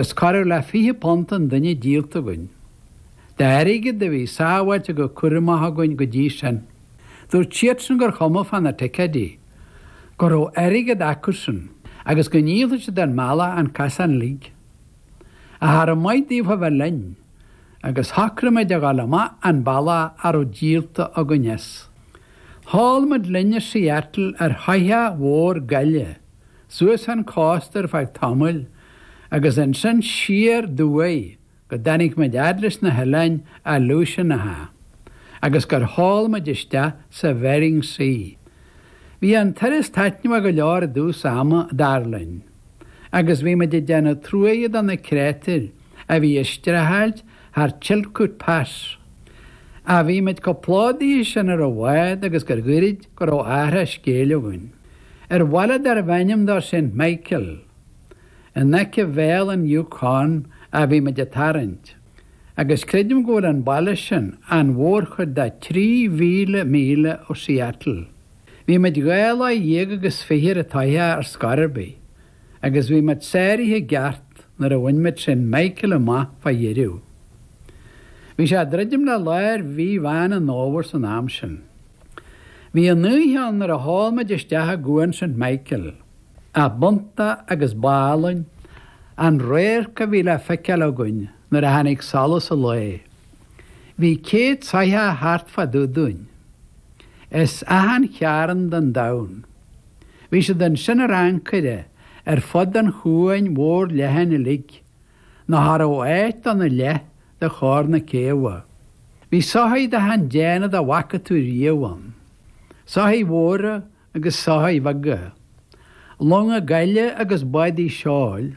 Is corradh le £20 an duine díolta againn, d'airgead a bhí sábháilte go cúramach againn go dtí sin. Dúirt siadsan gur chuma fá na ticéidí, go raibh airgead acusan agus go ndíolfadh siad ár mbealach an casán uilig. Cha raibh maith daofa a bheith linn, agus shocraigh muid a dhul amach an bealach a raibh díolta againn as. Sheol muid linn ó Seattle ar shoitheach mhór gaile suas an cósta ar feadh tamaill agus ansin siar aduaidh go dtáinig muid fhad leis na hoileáin Aleutianacha agus gur sheol muid isteach sa Bhering Sea. Bhí an turas taitneamhach go leor i dtús ama, dar linn, agus bhí muid ag déanamh truaighe do na créatúir a bhí ag streachailt thar Chilkoot Pass, ach bhí muid chomh plódaithe sin ar an bhád agus gur ghoirid go raibh athrach scéil againn. Ar bhaile darbh ainm dó Saint Michael, In aice Bhéal an Yukon a bhí muid ag tarraingt, agus creidim go bhfuil an baile sin an mhórchuid de 3,000 míle ó Seattle. Bhí muid dhá lá dhéag agus fiche ar an tsoitheach ar scor ar bith, agus bhí muid sáraithe i gceart nuair a bhain muid Saint Michael amach fá dheireadh. Bhí sé ag druidim le lár mhí Mheán an Fhómhair san am sin. Bhí an oíche ann nuair a sheol muid isteach i gCuan Saint Michael. B'iontach agus b'álainn an radharc a bhí le feiceáil againn nuair a tháinig solas an lae. Bhí céad soitheach thart fá dtaobh dúinn, as achan chearn den domhan. Bhí siad ansin ar ancaire ar fud an chuain mhóir leathain uilig, nó cha raibh áit ann i leith de chóir na céabha. Bhí soithigh d'achan déanamh dá bhfaca tú riamh ann, soithigh mhóra agus soithigh bheaga, longa gaile agus bádaí seoil,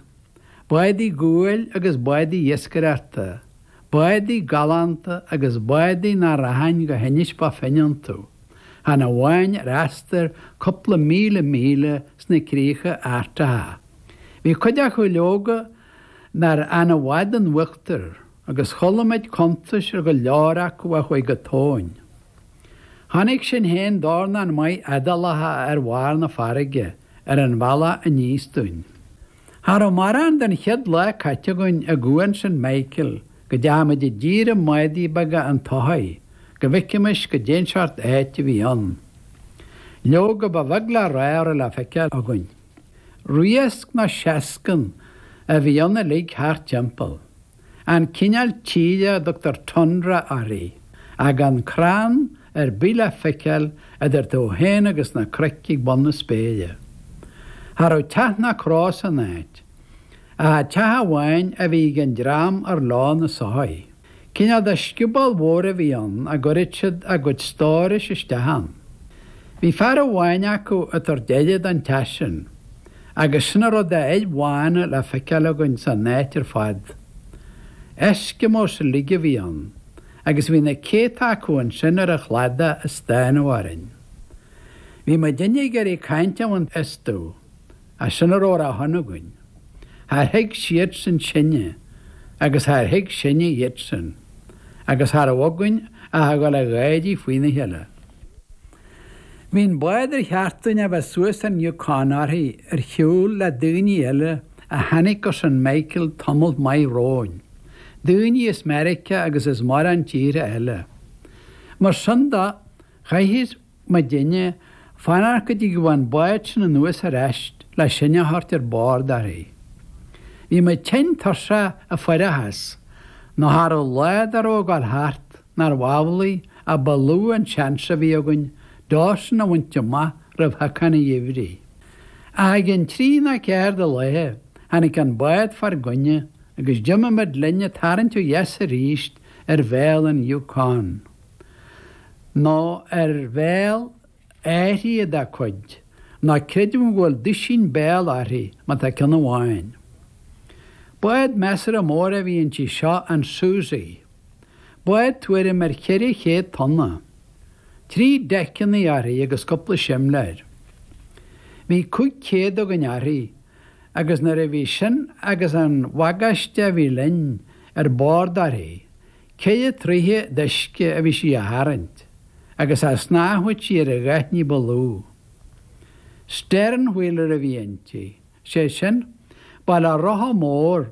bádaí guail agus bádaí iascaireachta, bádaí galánta agus bádaí nach rachainn go hInis Bó Finne iontu, chan amháin ar astar cúpla míle míle sna críocha Artacha. Bhí cuid acu, leoga, nár fhan i bhfad in uachtar, agus chuala muid cuntais ar go leor acu a chuaigh go tóin. Chonaic sinn féin dornán maith éadálacha ar bharr na farraige ar an bhealach aníos dúinn. Cha raibh mórán den chéad lá caite againn i gCuan Saint Michael go dteachaidh muid i dtír i mbádaí beaga an tsoithigh go bhfeicfimis goidé an seort áit a bhí ann. Leoga ba bheag le rá a raibh le feiceáil againn. Riasc nó seascann a bhí ann uilig thart timpeall. an cineál tíre a dtugtar tundra uirthi, gan crann ar bith le feiceáil idir tú féin agus na cnoic ag bun na spéire. Cha raibh teach ná cró san áit, ach teach amháin a bhí ag an dream ar leo na soithigh. Cineál de scioból mhór a bhí ann a gcuireadh siad a gcuid stórais isteach ann. Bhí fear amháin acu ag tabhairt aire don teach sin. Agus sin a raibh de fhir bhána le feiceáil againn san áit ar fad. Eskimos uilig a bhí ann, agus bhí na céadta acu ansin ar an chladach ag stánadh orainn. Bhí muidinne ag iarraidh caint a bhaint astu, ach sin a raibh ar a shon againn. Char thuig siadsan sinne, agus char thuig sinne iadsan, agus cha raibh againn ach a dhul ag gáirí faoina chéile. Bhí an bád ar cheart dúinn a bheith suas ar an Yukon uirthi ar shiúl le daoine eile a tháinig go St. Michael tamalt maith romhainn, daoine as Meiriceá agus as mórán tíortha eile. Mar sin de, chaithfeadh muidinne fanacht go dtí go bhfilleadh an bád sin anuas ar ais le sinn a thabhairt ar bord uirthi. Bhí muid tinn tuirseach ag fuireachas, ná cha raibh lá dá raibh ag dul thart. Nárbh amhlaidh a ba lú an seans a bhí againn Dawson a bhaint amach roimh shiocán an gheimhridh? Ach i gcionn trí ná ceathair de laethe, tháinig an bád fár gcoinne agus d'imigh muid linn ag tarraingt ó dheas arís ar bhéal an Yukon. Nó ar bhéal áithrid dá cuid, ná creidim go bhfuil duisín béal uirthi, má tá ceann amháin. Bád measartha mór a bhí inti seo, an Susie. Bád tuairim ar 400 tonna, trí deiceanna uirthi agus cúpla simléir. Bhí 500 againn uirthi agus nuair a bhí sin agus an bhagáiste a bhí linn ar bord uirthi, sé troithe d'uisce a bhí sí a tharraingt agus cha snámhfadh sí ar a dhath ní ba lú. Stern wheeler a bhí inti, sé sin, ba le rotha mór